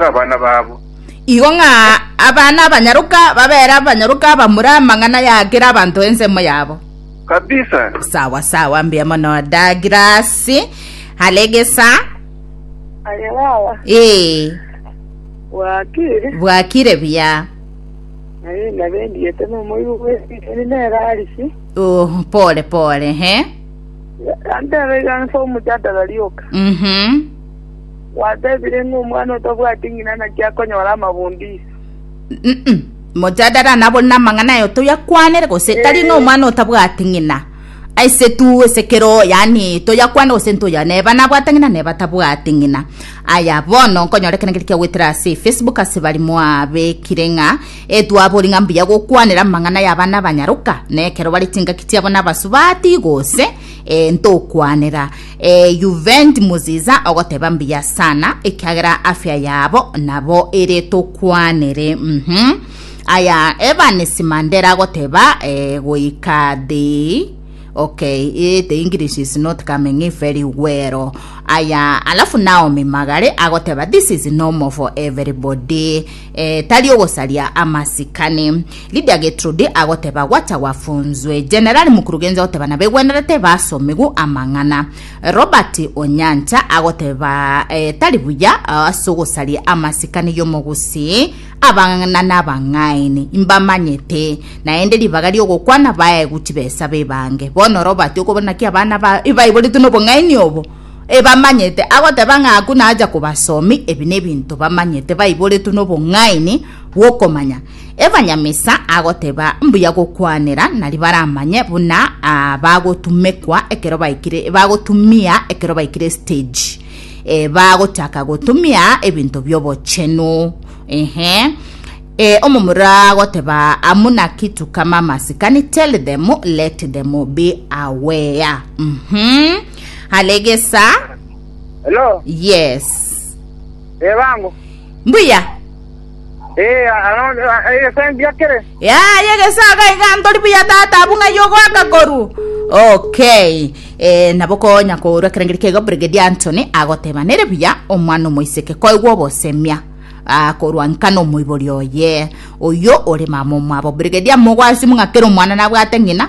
ase abana babo. Igo ng'a abana abanyaroka babere abanyaroka bamura amang'ana ya kera abanto ensemo yabo. Kabisa. Sawa sawa, mbuya mono Douglas. Alegesa. Aye baba, Ee, bwakire, bwakire buya. naye nabendiete nomoigo bwesiseni nerarisi, Oh, pole pole, he. antebe iga nse omojadala rioka. Mhm. Gwatebire ng'a omwana otabwati ng'ina naki akonyora amabondo iso. Mojadala nabo rinde amang'ana aye otari akwanere, gose tari ng'a omwana otabwati ng'ina. Aise tu ase kero yani toyakwane gose ntoya neba nabwate ng'ina neba tabwati ng'ina. Aya bono nkonyora ekero ngeria kiagwetera ase Facebook ase bari mwabekire ng'a etwabori ng'a mbuya gokwanera amang'ana ya abana abanyaroka na ekero bare chingaki chiabo na abasubati gose ntokwanera E Juvendi Muziza ogoteba mbuya sana ekiagera afya yabo nabo ere tokwanere mhm aya Evans Mandela agoteba e goika the okay e, the English is not coming in very well aya alafu Naomi Magare agoteba this is normal for everybody Eh, tari ogosaria amasikani. Lidia Getrude agoteba gwacha gwafunzwe. Generali Mukurugenzi agoteba nabegwenerete basomigwe amang'ana. Robert Onyancha agoteba eh, tari buya ah, ase ogosaria amasikani y'omogusii abang'ana nabang'aini imbamanyete naende ribaga riogokwana baegu chibesa bebange bono robati okobona ki abana ba ibaiboretwe nobong'aini obo ebamanyete, agoteba ng'a aku nacha kobasomi, ebi nebinto bamanyete baiboretwe nobong'aini bw'okomanya. Ebanyamisa agoteba mbuya gokwanera, nari baramanye buna ah, bagotumekwa ekero baikire bagotumia ekero baikire stage eh, bagochaka gotumia ebinto biobochenu ehe Eh, omomura agoteba amuna kitu kama masikani tell them let them be aware mm -hmm. Alegesa. Hello. Yes. Eh bangu. Mbuya. Eh ano eh sendia kere. Ya yegesa ga iganto ribuya tata abunga yogo akakoru. Okay. Eh nabo konya korwa kerengeri kego Brigadier Anthony agoteba nere buya omwana omoiseke koigwa obosemia. akorwa nkana omoibori oye oyo ore mama omwabo brigadier mogwasi mung'akere omwana nabwate ng'ina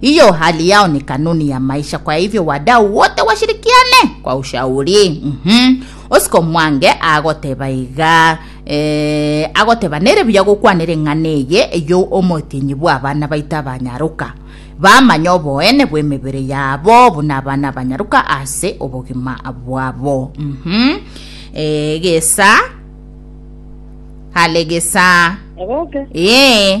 Hiyo hali yao ni kanuni ya maisha, kwa hivyo wadau wote washirikiane kwa ushauri. mm -hmm. Osiko mwange agoteba iga e, agoteba nere buya gokwanera eng'ana eye eyo omotinyi bwa abana baito abanyaruka bamanye oboene bw'emebere yabo buna abana abanyaruka ase obogima bwabo mm -hmm. e, gesa hale gesa Egoke. ee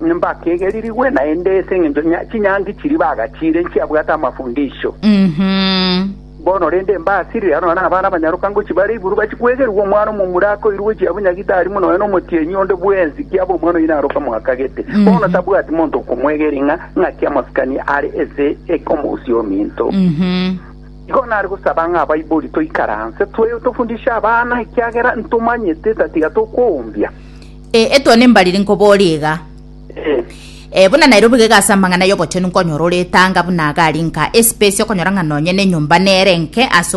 Mbakegerigwe naende ase engencho ya chinyangi chiria bagachiire nchiabwate amafundisho. Mhm. Bono rende mbasirire aro naro abana abanyaroka ngochia bare iguru bachie kwegerigwa omwana omomura akoirwe gochia abwo nyagitari mono nonya omotienyi onde bwensi ki abe omwana oyio naroke amwakagete. Bono tabwati monto okomwegeria ng'a ng'aki amasikani are ase eke omousia ominto. Mhm. Igo nare gosaba ng'a Baibori toikaranse, twe- tofundishe abana ekiagera ntomanyete tatiga tokoumbia. E, etwa nembariri nkoboria iga. E, buna Nairobi gega ase amang'ana y'obochenu nkonyora ore etanga buna agari nka espesi okonyora ng'a nonye nenyomba nere enke ase